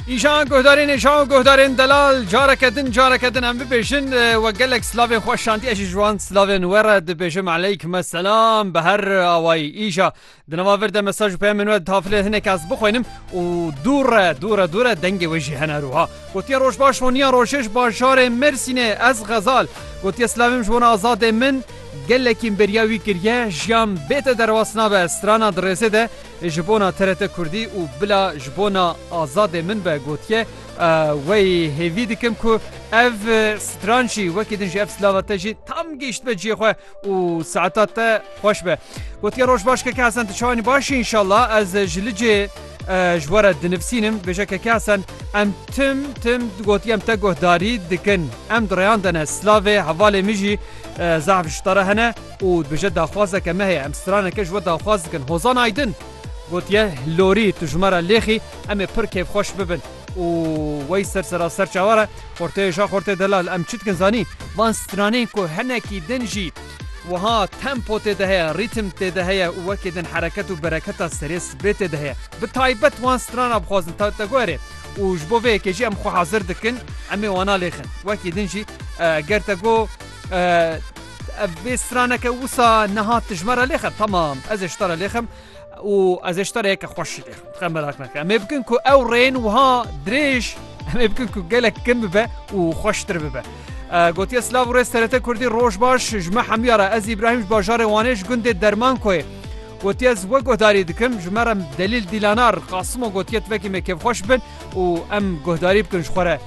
Îşan guhdarên êşan û guhdarên delal careke din careke din em bibêjin we gelek silavên xwe şandî ez jî ji wan silavên we re dibêjim eleyk me selam bi her awayî îşa di nava vir de mesaj û peyamên we tafilê hinek ez bixwînim û dûre dûre dûre dengê wê jî hene rûha gotiye roj baş honiya rojêj bajarê Mêrsînê ez xezal gotiye silavim ji wan azadê min gelekî beriya wî kiriye jiyan bête derwas nabe strana di rêzê de Ji bona TRT Kurdî û bila ji bona Azadê min be gotiye, Wey hêvî dikim ku ev stran jî wekî din ji ev silava te jî tam gihîştbe ciyê xwe û saeta te xweş be. Gotiye roj baş Keke Hesen tu çawanî baş î înşallah ez ji licê ji we re dinivsînim. Bêje Keke Hesen em tim tim gotiye em te guhdarî dikin. Em di rêyan de ne. Silavê hevalê min jî zehf ji te re hene. Û dibêje daxwazeke me heye, em straneke ji we daxwaz dikin. Hozan Aydin gotiye Lorî tu ji me re lêxî em ê pir kêfxweş bibin û wey ser sera ser çawa re xorteyê ja xortê delal em çi dikin zanî? Van stranên ku hinekî din jî wiha tempo tê de heye, rîtim tê de heye û wekî din hereket û bereketa serê sibê tê de heye. Bi taybet wan strana bixwazin Tewteguerê û ji bo vê yekê jî em xwe hezir dikin em ê wana lêxin. Wekî din jî ger te got Ev bê straneke wisa niha tu ji me re lêxir tamam ez ê ji te re lêxim û ez ê ji te re yeke xweş jî lêxim dixem merak neke em ê bikin ku ew rên wiha dirêj em ê bikin ku gelek kin bibe û xweştir bibe gotiye silav û rêz TRT Kurdî roj baş ji me hemiya re ez Îbrahîm ji bajarê Wanê ji gundê derman koyê gotiye ez we guhdarî dikim ji me re delîl dîlanar qasimo gotiye tivekî me kêfxweş bin û em guhdarî bikin ji xwe re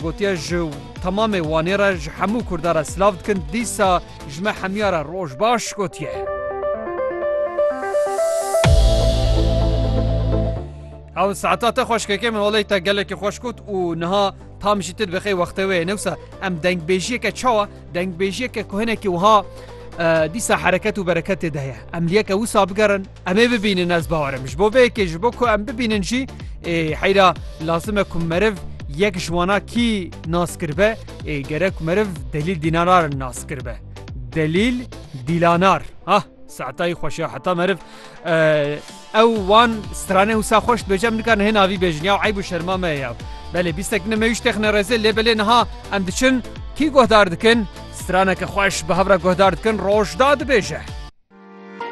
gotiye ji temamê Wanê re ji hemû Kurda re silav dikin dîsa ji me hemiya re roj baş gotiye. Ew saeta te xweşkekê min olê te gelekî xweş got û niha tam jî tu dibixê wextê wê yê newsa em dengbêjiyeke çawa dengbêjiyeke ku hinekî wiha dîsa hereket û bereketê de heye em liyeke wisa bigerin Em ê bibînin ez bawerim ji bo vê yekê ji bo ku em bibînin jî ê heyra lazim e ku meriv yek ji wana kî nas kiribe ê gerek meriv delîl dînanar nas kiribe. Delîl dîlanar ha saetayî xweş ya heta meriv ew wan stranê wisa xweş dibêje em nikarin hê navî bêjin ya eyb û şerma me ya belê bîstek ne me wî texne rezê lê belê niha em diçin kî guhdar dikin straneke xweş bi hevra guhdar dikin roj da dibêje.